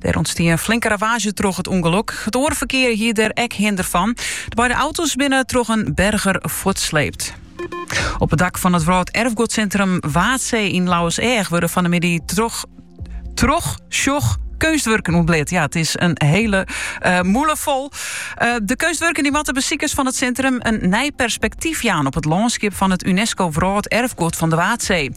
Der ûntstie in flinke ravaazje troch it ûngelok. It oare ferkear hie der ek hinder fan. De beide auto's binne troch in berger fuortsleept. Op it dak fan it Wrâld Erfgoedsintrum Waadsee yn Lauwerseach wurde fan de middei trochsjochkeunstwurken ûntblit. Ja, it is in hele uh, eh, mûle fol. Eh, de keunstwurken die moatte besikers fan it sintrum in nij perspektyf jaan op it lânskip fan it UNESCO Wrâld Erfgoed fan de Waadsee.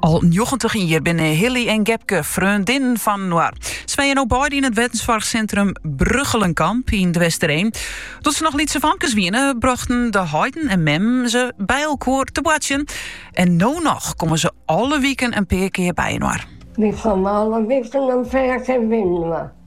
Al njoggentich jier binne Hilly en Gepke freondinnen fan inoar. Se wenje no beide yn it wensoarchsintrum Brugchelenkamp yn De Westereen. Doe't se noch lytse famkes wiene, brochten de heiten en memmen se by elkoar te boartsjen. En no noch komme se alle wiken in pear kear by inoar.